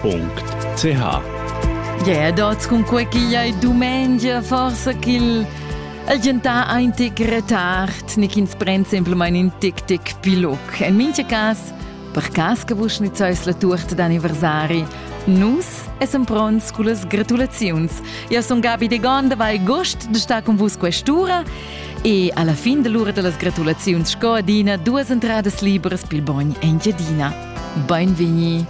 www.ch Yeah, dots cun quei ch'igl ei dumengia, forsa ch'il el gentà ein tic retard, ni ch'ins pren semplamein in tic-tic piloc. En mintga cas, per cas che vus schnitzeis la tuorta d'anniversari, nus essem pronts con las gratulaziuns. Io son Gabi de Gonda, vai gost de star con vus quest'ura e alla fin dell'ora dellas gratulaziuns sco adina duas entradas liberas pil bogn Engiadina. Beinvegni.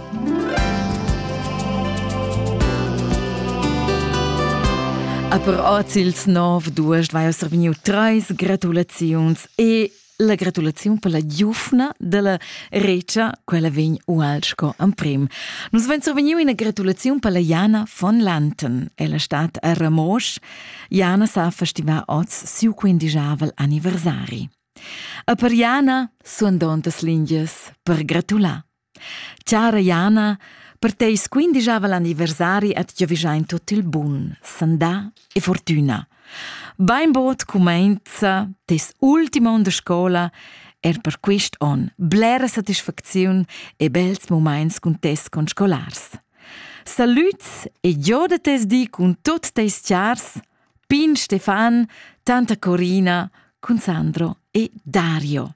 A per oz ils nov duas vai vegniu treis gratulaziuns e la gratulaziun per la giufna dalla Recia, quella vegn ual sco emprim. Nus vein survegniu ina gratulaziun per la Jana von Lanten, ella stat a Ramosch. Jana sa festivar oz siu quindigiavel anniversari. A per Jana suandontas lingias per gratular. Chara Jana, per teis quindigiavel anniversari at giovigiain tot il bun, sandà e fortüna. Bainbod cumainza tes ultima on da scola er per quist on blera satisfacziun e bels momaints cun tes conscolars. Salüts e gioda tes di cun tot teis chars Pin Stefan, tanta Corina cun Sandro e Dario.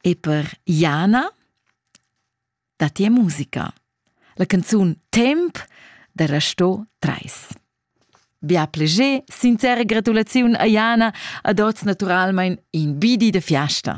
E per Jana datti musica. La canzun Temp da Rasto 3. Bia pleger, sincera gratulaziun a Jana ad oz naturalmein in bidi de fiasta.